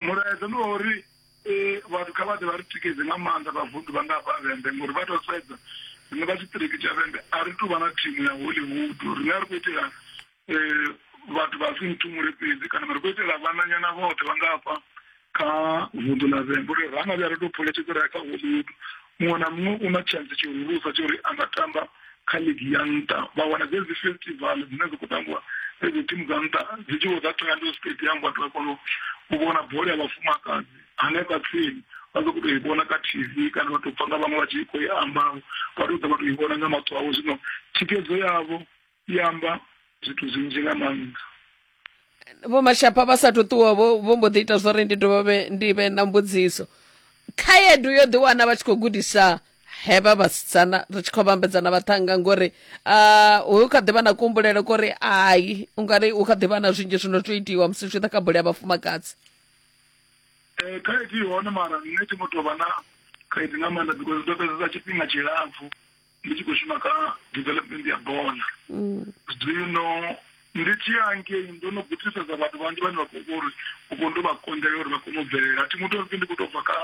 mulaedza ndi wa uri eh, vhathu kha vha ḓe vha ri tikedze nga maanḓa vhavunḓu vha nga hafha vhembe ngori vha tou sedza riṋe vha tshiṱiriki tsha vhembe a ri tou vha na thimu ya hollywood riṋe a ri khou itela eh, vhathu vha si nthumule fhedzi kana ri khou itela vhananyana vhoṱhe vha nga hafha kha vunḓu ḽa vhembe uri ra nga vhuya ri tou phuletshedzela kha hollywood muṅwe na muṅwe u na tshantsi tshihulusa tsho uri a nga tamba kha ligi ya nṱha vha wana dzedzi festival dzine dzi khou tambiwa dzedzi thimu dza nṱha dzi tshi vho dza thoyando stadium vhathu vha kona u vhona bola ya vhafumakadzi hanefha tsini vha ḓo kuto i vhona kha tv kana vha tou pfa nga vhaṅwe vha tshi khou i amba vha tou ḓa vha tou i vhona nga maṱo avho zwino thikedzo yavho i amba zwithu zwinzhi nga maanḓa vho mashapha vha sa ṱuwa vho vho mbo ḓi ita zwori ndi dovhe ndi vhe na mbudziso khaedu yo ḓi wana vha tshi khou gudisa hevha vhasidzana ri tshi khou vhambedzana vhaṱhanga ngori uh, hu kha ḓivha na kuhumbulele kori ai ungari hu kha ḓivha na zwinzhi zwino zwo itiwa musi zwi ḓa kha bole ya vhafumakadzi eh, khaedu i hone mara nṋe thi ngo tou vha na khaedu nga maanḓa because ndo fhedzesa tshifhinga tshilapfu ndi tshi khou shuma kha development ya bola mm. zwino ndi tshi ya ngei ndo no gudisesa vhathu vhanzhi vhane vha khou uri u khou ndo vha konḓela uri vha kone u bvelela a thi muthu uri ndi khou tou bva kha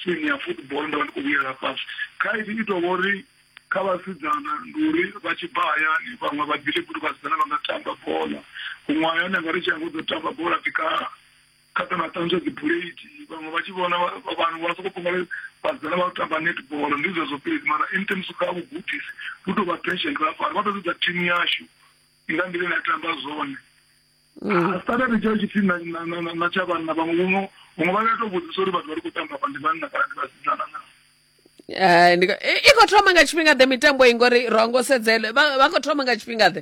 simu ya football ndo vha ndi khou vhuyela fhasi khaidi i tou vha uri kha vhasidzana ndi uri vha tshi bva hayani vhaṅwe vha ḓile kuti vhasidzana vha nga tamba bola huṅwe hayani anga ri tshi ya ngo ḓo tamba bola ndi kha kha kana ṱanzwa dzibuleiti vhaṅwe vha tshi vhona vanhu vha soko pfumala vhasidzana vha tamba netball ndi zwezwo fhedzi mara in terms kha vhugudisi vhu tou vha pension vha fara vha ḓo sedza thimu yashu nga nḓila ine ya tamba zwone mm. standard tshayo tshipfi na tsha vhanna vhaṅwe vhuṅwe vhaṅwe vha ya tou vhudzisa uri vhathu vha ri khou tamba vha ndi vhanna kana ndi vhasidzana naa eh, i khou thoma nga tshifhinga ḓe mitambo i ngori ro ngo sedzele vha khou thoma nga tshifhinga ḓe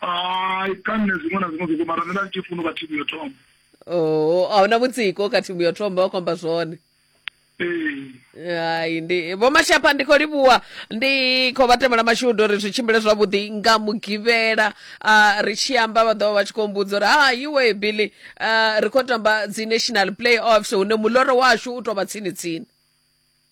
hai kha nṋe zwiṅwe na zwiṅwe zwo mara nṋe nda ndi tshi funa u vha thimu yo thoma oh a huna mutsiko kha thimu yo thoma vha khou amba zwone ee hai ndi vho mashapha ndi khou livhuwa ndi khou vha temela mashudu uri zwi tshimbile zwavhuḓi nga mugivhela ah, ri tshi amba vha ḓovha vha tshi khou mbudza uri ha iwe billy ah, ri khou tamba dzi national play offs hune muloro washu u tou vha tsini tsini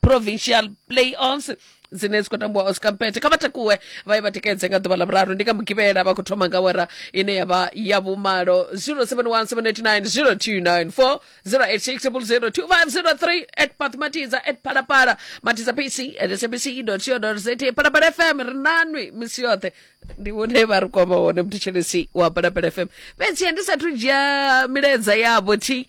provincial playoffs dzine dzi khou tambiwa oscar mpete kha vha takuwe vha ye vha tikedze nga ḓuvha ḽa vhuraru ndi nga mugivhela vha khou thoma nga wera ine ya vha ya vhumalo 0717890294 0860002503 at pat matiza at palapala matiza pc at sabc co za palapala fm ri nanwi misi yoṱhe ndi hune vha ri kwama hone mthetshelesi wa palapala fm fhedzi ndi sathu dzhia milaedza yavho thi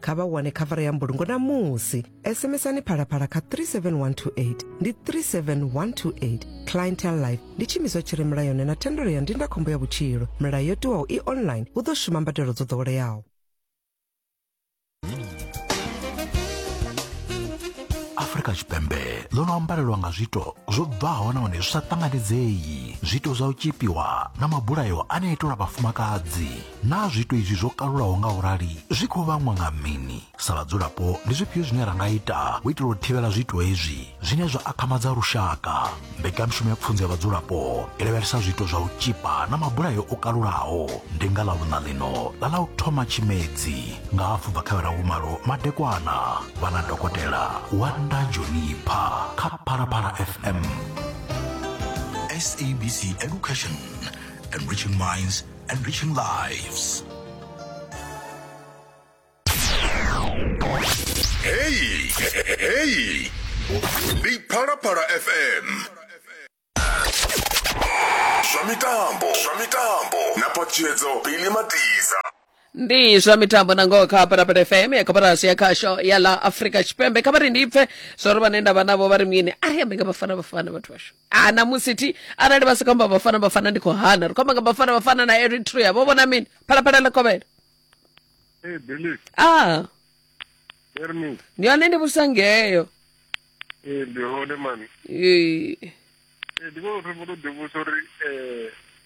kha vha wane khavara ya mbulungo na musi sms-ani phalaphala kha 37128 ndi 37128 clientel life ndi tshimiswa tshi re mulayoni na thendelo ya ndindakhombo ya vhutshilo milayo yo tiwaho i online hu ḓo shuma mbadelo dzo ḓoweleaho afurika tshipembe ḽo no ambarelwa nga zwiito zwo bvaho nahone zwi sa ṱanganedzei zwiito zwa u tshipiwa na mabulayo ane a itelwa vhafumakadzi Naa zwiito izwi zwo kalulaho nga u rali zwi khou vhangwa nga mini? Sa vhadzulapo, ndi zwifhio zwine ra nga ita u itela u thivhela zwiito hezwi zwine zwa akhamadza lushaka? Mbekanyamushumo ya Pfunzo ya Vhadzulapo i lavhelesa zwiito zwa u tzhipa na mabulayo o kalulaho. Ndi nga Ḽavhuṋa ḽino ḽa ḽa u thoma Tshimedzi nga hafu bva kha awara ya vhumalo madekwana, vha na Dokotela Wanda Jonipha kha Phalaphala FM. SABC Education, Enriching Minds, Enriching lives. Hey, hey, ndi Phalaphala FM. Zwa mitambo, zwa mitambo na patshedzo Billy Matiza. ndi zwa mitambo na ngoho kha parapara fm ya koporasi ya khasho ya la afrika tshipembe kha vha ri ndi pfe zwa uri vhane nda vha navho vha ri mini ari ambe nga vhafana vhafana vhathu vashu ha ah, namusi thi arali vha sika amba vhafana vhafana ndi khou hana ri khou amba nga vhafana vhafana na eritrea vho vhona mini phalaphala ḽa kovhela ee belief a ah. bermi ndi hone ndi vhusa ngeyo ee ndi hone mani ee ndi vhona uri vho to ḓivhusa uri um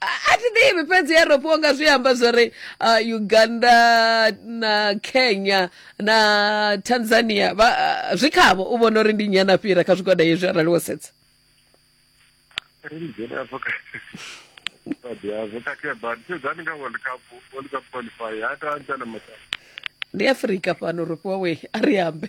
a a thi ḓivhi fhedzi europe unga zwi amba zwo ri uh, uganda na kenya na tanzania vha, uh, zwi khavho u vhona uri ndi nnyi ana fhira kha zwigwada hezwi arali wo sedza Religion ya vho ka- But ya vho ka ke bad. So zani nga World Cup, World Cup qualifier. Hata antana mata. ndi afrika fhano ro fhiwa we a ri ambe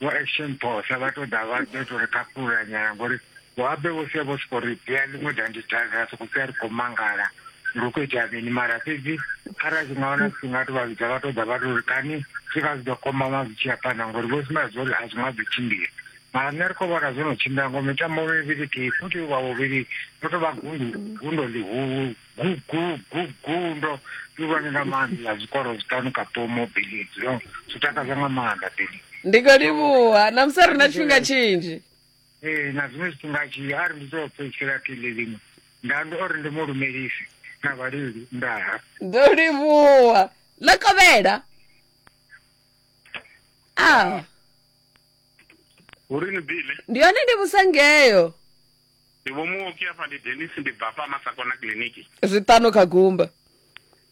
vho action posa vha to ḓa vha ḓo to ri khakhulula nyana ngori vho abe vho sia vho soko ri dzhia ḽiṅwe danditanga ra soko sia ri khou mangala uri u khou itea mini mara fhedzi arali zwi nga wana zwi nga to vha vhidza vha to ḓa vha to ri kani zwi nga zwi ḓo kombama zwi tshi ya phanḓa ngori vho sumbedza zwo uri a zwi nga ḓo tshimbila mara nṋe ri khou vhona zwo no tshimbila ngo mitambo mivhili kei futhi vha vhuvhili ro to vha gundo gundo ḽihulu Gugu, gugu, ndo ivhani nga maanḓa zwikoro zwiṱanu kapomo Billy yo zwi takadza nga maanḓa Billy ndi khou livhuha namusi ri na tshifhinga tshinzhi ee na zwiṅwe zwifhinga tshi a ri ndi tou fhedzisela kile ḽiṅwe nda ndi ori ndi mu lumelisi na vhaleli ndaha ndo livhuha ḽa kovhela a hurini bile ndi yone ndi vhusangeyo Ndi vho Muoki afha ndi Dennis ndi bva afha Masakona kiliniki. Zwiṱanu kha gumba.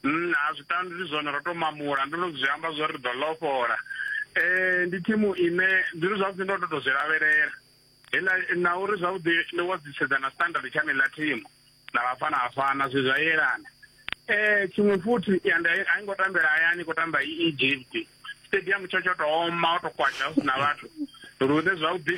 Nna zwiṱanu ndi zwone ro to mamula ndo no zwi amba zwori ri ḓo lofhola. Eh ndi thimu ine ndi ri zwavhuḓi ndo to zwi lavhelela. Hela na uri zwavhuḓi ndo wa dzi sedzana standard tsha nela thimu na vhafana vhafana zwi zwa yelana. eh tshiṅwe futhi ya nda a ngo tambela hayani ko tamba i Egypt stadium tsho tsho to oma o to kwasha hu na vhathu lune zwavhuḓi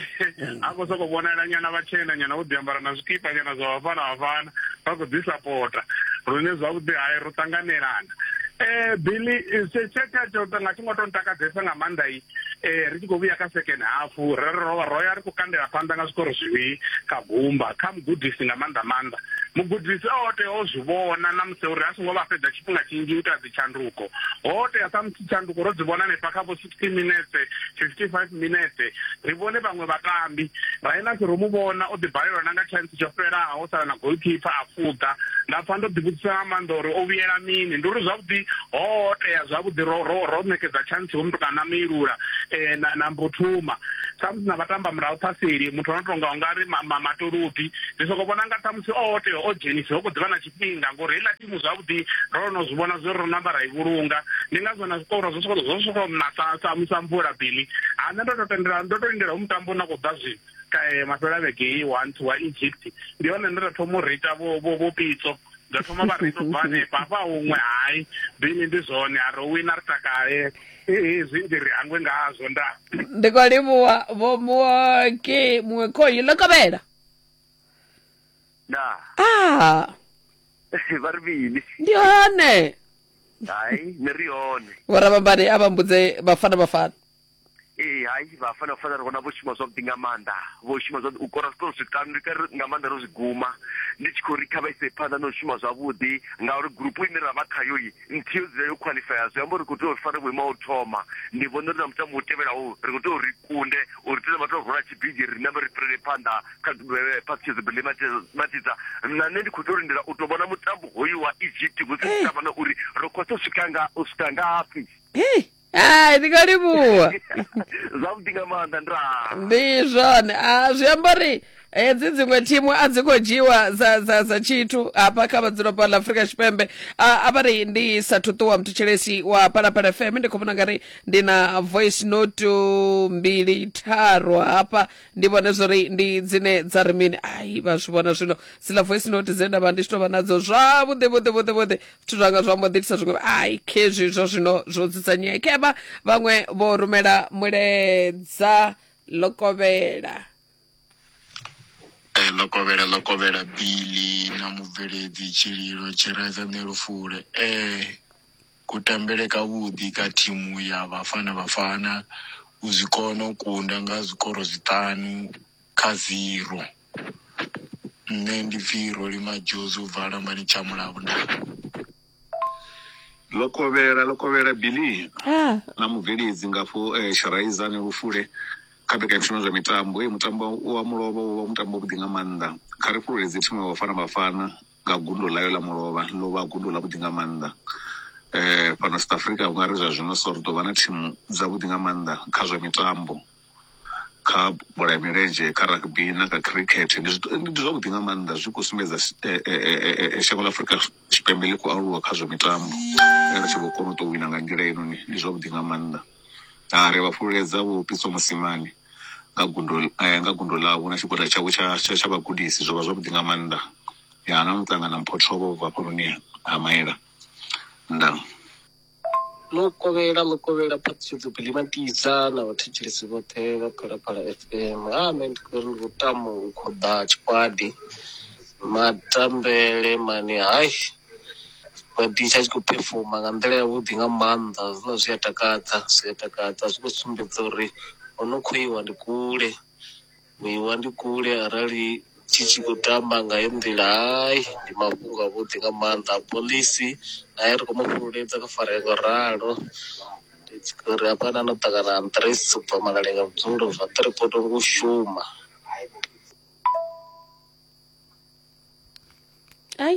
a khou sokou vhonala nyana vhatshena nyana vho ḓiambara na zwikipa nyana zwa vhafana vhafana vha khou ḓi sapota lune zwavhuḓi hayi ro ṱanganelana um billy tshetha tsho nga tshi ngo to ntakadzesa nga maanḓa i eh ri tshi khou vhuya kha second half ro ro ro ya ri khou kandela phanḓa nga zwikoro zwivhili kha gumba kha mugudisi nga maanḓa maanḓa mugudisi o tea o zwi vhona na musi uri a songo vha fhedza tshifhinga tshinzhi u ita dzitshanduko ho tea sa musi tshanduko ro dzi vhona hanefha kha vho 60 minetse 55 minetse ri vhone vhaṅwe vhatambi rainasi ro mu vhona o ḓi balelwa na nga chance tsho fhelaho ho sala na golkipa a fuḓa nda pfa ndo ḓivhudzisa nga maanḓa uri o vhuyela mini ndi uri zwavhuḓi ho tea zwavhuḓi ro ro ro ṋekedza chance ho mutukana na meilula eh na na mbuthuma samusi na vhatamba murahu phaseli muthu ono tonga ungari matolubi ndi soko vhona nga ṱhamusi o tea o dzhenisa ho kho ḓivha na tshifhinga ngori heiḽa thimu zwavhuḓi ro no zwi vhona zwi ro namba ra i vhulunga ndi ngazwo na zwiṱoro zwo soko zwo soko na sa sa mvula bili ha nṋe ndo to tendela ndo to lindela hu mutambo na khou ḓa zwino kae mafhela vhege i one to wa egypt ndi hone nda thoma u rita vho vho vho pitso nda thoma vha rito bva hanefha hafha huṅwe hai bini ndi zwone a ri wina ri takale hezwi ndi ri hangwe ngazwo nda ndi khou livhuwa vho muwe ke muṅwe khoyi ḽo kovhela na ah vha ri bini ndi hone hai ni ri hone vhorabambani a vha mbudze vhafana vhafana ee hai vhafana fana ri vhona vho shuma zwavhuḓi nga maanḓa vho shuma zwavhuḓi u kora zwiṱoro zwiṱanu ndi kari nga maanḓa ro zwi guma ndi tshi khou ri kha vha ise phanḓa na u shuma zwavhuḓi ngauri gurupu ine ra vha khayoyi nthihi yo dzula yo khwaḽifaya zwi amba uri khou tea uri fare vhuimo u thoma ndi vhona uri na mutambo u tevhelaho ri khou tea uri ri kunde uri tea vha tou rula tshibigi ri nambe ri fhirele phanḓa kha phaṱhutshedzo eh, bele matidza na nṋe ndi khou tea u lindela u tou vhona mutambo hoyu wa egypt hu si tavha na uri ro khou tou swika nga u swika ngafhi hai ndi nga livhuwa zwavhuḓi nga maanḓa nda ndi zwone a zwi amba uri hedzi dziṅwe thimu a dzi khou dzhiwa dza dza dza tshithu hafha kha vhadzulapo ḽa afurika tshipembe a a vha ri ndi sa thuṱuwa muthutshelesi wa palapala fm ndi khou vhona nga ri ndi na voice note mbili tharu hafha ndi vhone zwori ndi dzine dza ri mini ai vha zwi vhona zwino dziḽa voice note dze nda vha ndi tshi tou vha nadzo zwavhuḓi vhuḓi vhuḓi vhuḓi zwithu zwanga zwa mbo ḓi itisa zwiṅwe ai khezwi zwa zwino zwo dzudzanyea khevha vhaṅwe vho rumela mulaedza lokovhela Eh, lokovhela lokovhela bili na mubveledzi tshililo tshiraidza nṋe lufule eh kutambele kavhuḓi ka thimu ya vhafana vhafana u zwi kona u kunda nga zwikoro zwiṱanu kha zero Nṋe ndi pfi Roli Madjozi ubva Lambani tsha Mulavu nda. ḽo kovhela ḽo kovhela billy Ah, na mubveledzi ngafho eh, sharaiza ni lufule kha mbekanyamushumo zwa mitambo hey, mutambo wa mulovha wo vha mutambo wavhuḓi nga maanḓa kha ri fhululedze thimu ya vhafana vhafana nga gundo ḽayo ḽa mulovha ḽo vha gundo ḽa vhuḓi nga maanḓa eh fhano south africa ungari zwa zwino so ri ḓo vha na thimu dzavhuḓi nga maanḓa kha zwa mitambo kha bola ya milenzhe kha rugby na kha khirikhethe ndi zwithu ndi zwavhuḓi nga maanḓa zwi khou sumbedza shango ḽa afurika tshipembe ḽi khou aluwa kha zwa mitambo ri tshi vho kona u tou wina nga nḓila heinoni ndi zwavhuḓi nga maanḓa ha ri vha fhululedza vho pitso musimane nga gundo nga gundo ḽavho na tshigwada tshavho tsha tsha tsha vhagudisi zwo vha zwavhuḓi nga maanḓa ya na muṱangana mphotho vho bva hafhanoni ha maela ndaa Ḽo kovhela ḽo kovhela phaṱhutshedzo Bilimatisa na vhathetshelesi vhoṱhe vha Phalaphala FM. Ha nṋe ndi khou ri ndi lutamo u khoḓa tshikwadi matambele mani hai tshikwadi tsha tshi khou phefoma nga nḓila yavhuḓi nga maanḓa hezwiḽa zwi a takadza zwi a takadza zwi khou sumbedza uri ho no khou iwa ndi kule. Vhuiwa ndi kule arali tshi tshi khou tamba nga heyi nḓila hai ndi mafhungo a vhuḓi nga maanḓa a phoḽisi nae ri khou mu fhululedza kha farea ngo ralo ndi tshi khou ri hafha na no ṱangana Andries u bva Malaleng a vhudzulo zwa three poto ngo u shuma. Ai.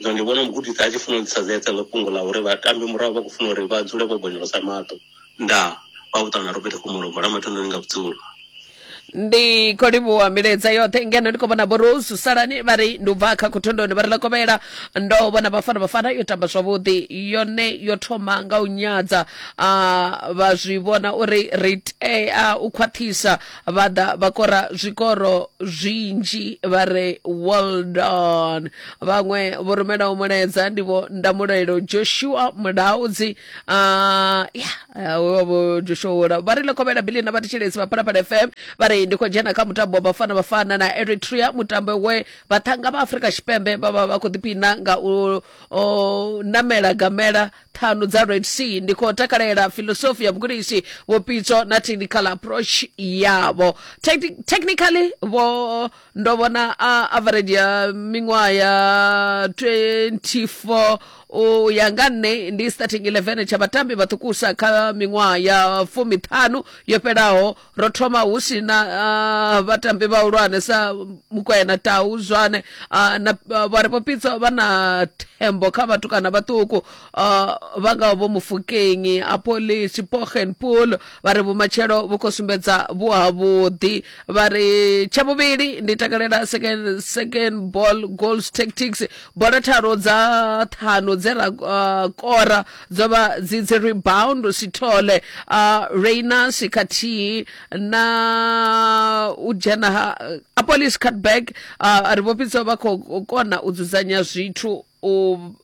Zwino ndi vhona mugudisi a tshi funa u ḓisa zedza nga fhungo ḽa uri vhatambi murahu vha khou funa uri vha dzule vho bonyolosa maṱo. Ndaa, vha vhuṱa na Robert Khumalo, bola mathononi nga vhudzulo. ndi khou livhuwa milaedza yoṱhe ngeno ndi khou vhona vho rose salani vha ri ndi u bva kha khothondoni vha ri ḽa kovhela ndo vhona bafana bafana yo tamba zwavhuḓi yone yo thoma nga u nyadza a vha zwi vhona uri ri tea u khwaṱhisa vha ḓa vha kora zwikoro zwinzhi vha re weldon vhaṅwe vho rumelaho mulaedza ndi vho ndamulelo joshua mulaudzi ah, ya ah, we wa vho joshua wola vha ri lekovhela bili na vhathetshelesi vha phalaphala fm vha ri ndi khou dzhena kha mutambo wa bafana bafana na eritrea mutambo we vhaṱhanga vha afrika tshipembe vha vha vha khou ḓipina nga u o, namela gamela ṱhanu dza red sea ndi khou takalela filosofi ya vhugudisi vhupitso na technical approach yavho Techni- technically vho ndo vhona a average ya miṅwaha ya 24 u ya nga nṋe ndi starting 11 tsha vhatambi vhaṱukusa kha miṅwaha ya fumiṱhanu yo fhelaho ro thoma hu si na uh, vhatambi vhahulwane sa mukwena tau zwane uh, na uh, vhari vho pitso vha na thembo kha vhathu kana vhaṱuku uh, vha ngaho vho mufukenyi apoli chipogen pool vha ri vhumatshelo vhu khou sumbedza vhu havhuḓi vha ri tsha vhuvhili ndi takalela second, second ball goals tactics bola tharo dza ṱhanu dze ra uh, kora dzo vha dzi dzi rebound sithole uh, rainas khathihi na u dzhena ha apolis catback uh, ri vho fhidza vha khou kona u dzudzanya zwithu u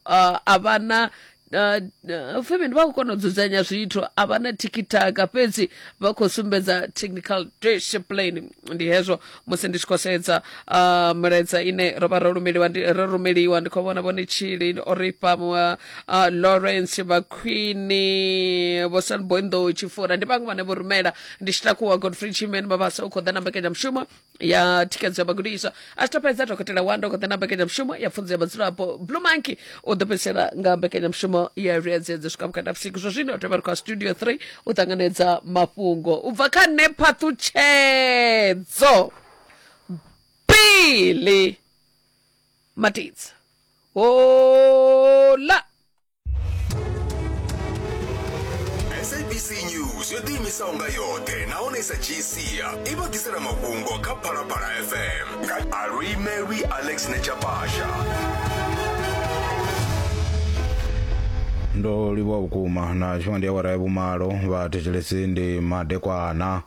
uh, a vha na Uh, uh, femeni vha khou kona u dzudzanya zwithu a vha na tikitaka fhedzi vha khou sumbedza technical discipline ndi hezwo musi ndi tshi khou sedza uh, milaedza ine ro vha ro rumeliwa ndi- ro rumeliwa ndi khou vhona vhone tshili oripa uh, lawrence vhakhwini vhosan boinḓou tshifura ndi vhaṅwe vhane vho rumela ndi tshi takuwa godfrey chimen mabasa u khou ḓa na mbekanyamushumo ya thikhedzo ya vhagudiswa a tshi to fhedza dokotela wanda u khou ḓa na mbekanyamushumo ya pfunzo ya vhadzulapo blue monkey u ḓipfesela nga mbekanyamushumo ya vhuyedzedzi swika vhukati ha vhusiku zwo zwino tovha ri khou studio 3 u ṱanganedza mafhungo u bva kha nṋe phaṱhutshedzo bili matidza hola sabc news yo ḓiimisaho nga yoṱhe nahone i sa dzhii sia i vha ḓisela mafhungo kha phalaphala fm Arui Mary Alex Nechapasha. ndo livhuwa vhukuma na tshifhinga ndi awara ya vhumalo vha thetshelesi ndi madekwana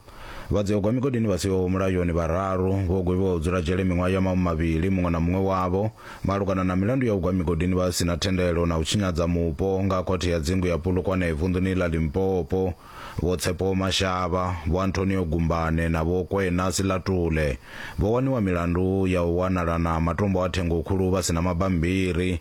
vhadziyogwa migodini vha siho mulayoni vhararu vho gwevhiwa u dzula dzhele miṅwaha ya mamu mavhili muṅwe na muṅwe wavho malugana na milandu ya u gwa migodini vha si na thendelo na u tshinyadza mupo nga khothe ya dzingu ya pulukwane vunḓuni ḽa limpopo Vho Tshepo Mashaba, Vho Antonio Gumbane na Vho Kwena Silatule vho waniwa milandu ya u wanala na matombo a thengokhulu vha si na mabammbiri.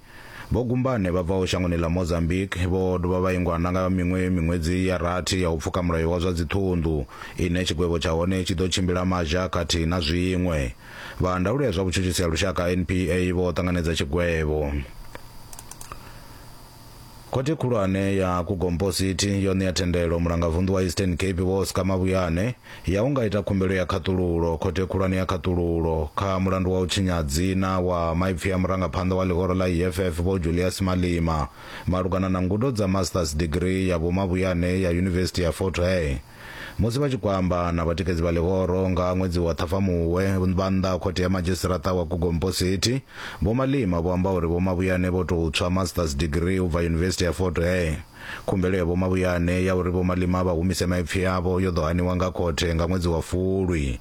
Vho Gumbane vha bvaho shangoni ḽa Mozambique vho dovha vha ingwa na nga miṅwe miṅwedzi ya rathi ya u pfuka mulayo wa zwa dziṱhunḓu ine tshigwevho tsha hone tshi ḓo tshimbila mazha khathihi na zwiṅwe. Vha ndaulo ya zwa vhutshutshisi ha lushaka, NPA, vho ṱanganedza tshigwevho. Khothe Khulwane ya Kukompositi yo ṋea thendelo Mulangavunḓu wa Eastern Cape Vho Oscar Mabuyane ya u nga ita khumbelo ya khaṱululo Khothe Khulwane ya Khaṱululo kha mulandu wa u tshinya dzina wa maipfi a murangaphanḓa wa ḽihoro ḽa EFF Vho Julias Malima malugana na ngudo dza Masters Degree ya Vho Mabuyane ya Yunivesithi ya Fort Hare. Musi vha tshi khou amba na vhatikedzi vha ḽihoro nga ha ṅwedzi wa Ṱhafamuhwe vha nnḓa ha khothe ya madzhisiṱaraṱa wa Gugompo City, Vho Malima vho amba uri Vho Mabuyane vho tou tswa Masters Degree u bva Yunivesithi ya Fort Hare. Khumbelo ya Vho Mabuyane ya uri Vho Malima vha humise maipfi avho yo ḓo haniwa nga khothe nga ṅwedzi wa Fulwi.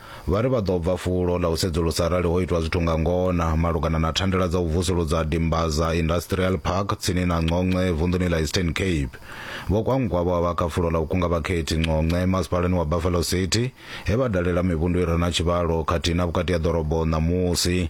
Vha ri vha ḓo bva fulo ḽa u sedzulusa arali ho itwa zwithu nga ngona malugana na thandela dza u vusuludza Dimbaza Industrial Park tsini na Nconce vunḓuni ḽa Eastern Cape. Vho Kwankwa vho a vha kha fulo ḽa u kunga vhakhethi Nconce masipalani wa Buffalo City he vha dalela mivhundu i re na tshivhalo khathihi na vhukati ha ḓorobo ṋamusi.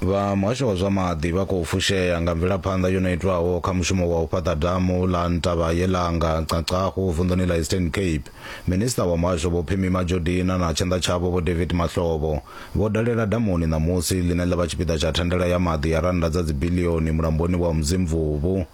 Vha muhasho wa zwa maḓi vha khou fushea nga mvelaphanḓa yo no itwaho kha mushumo wa u fhaṱa damu ḽa Ntaba Yelanga, Nxaxahu, vunḓuni ḽa Eastern Cape. Minisiṱa wa muhasho Vho Phemie Majodina na tshanḓa tshavho Vho David Mahlobo vho dalela damuni ṋamusi ḽine ḽa vha tshipiḓa tsha thandela ya maḓi ya rannda dza dzibiḽioni mulamboni wa Umzimvubu.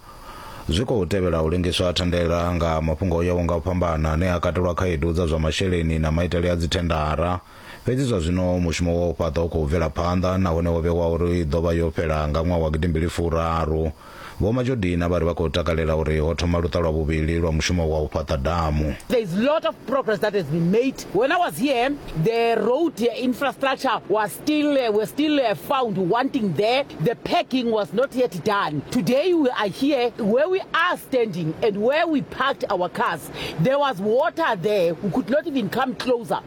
Zwi khou tevhela u lengiswa ha thandela nga mafhungo o yaho nga u fhambana ane a katelwa khaedu dza zwa masheleni na maitele a dzithendara. Fhedzi zwa zwino mushumo wa u fhaṱa u khou bvela phanḓa nahone wo vhewa uri i ḓo vha yo fhela nga ṅwaha wa gidimbili furaru. Vho Majodina vha ri vha khou takalela uri ho thoma luṱa lwa vhuvhili lwa mushumo wa u fhaṱa damu. There is lot of progress that has been made. When I was here, the road infrastructure was still, uh, were still uh, found wanting there. The packing was not yet done. Today we are here where we are standing and where we parked our cars. There was water there. We could not even come closer.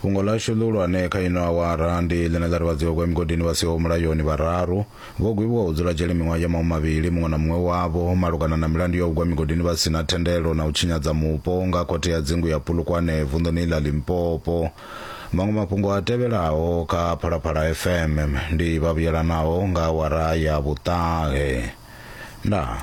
Fhungo ḽashu ḽihulwane kha ino awara ndi ḽine ḽa ri vhadzivhagwa ya migodini vha siho mulayoni vhararu vho gwevhiwa u dzula dzhele miṅwaha ya mahumi mavhili muṅwe na muṅwe wavho malugana na milandu ya u gwa migodini vha si na thendelo na u tshinyadza mupo nga Khothe ya Dzingu ya Polokwane vunḓuni ḽa Limpopo. Maṅwe mafhungo a tevhelaho kha Phalaphala FM ndi vha vhuyelanaho nga awara ya vhuṱahe. Ndaa.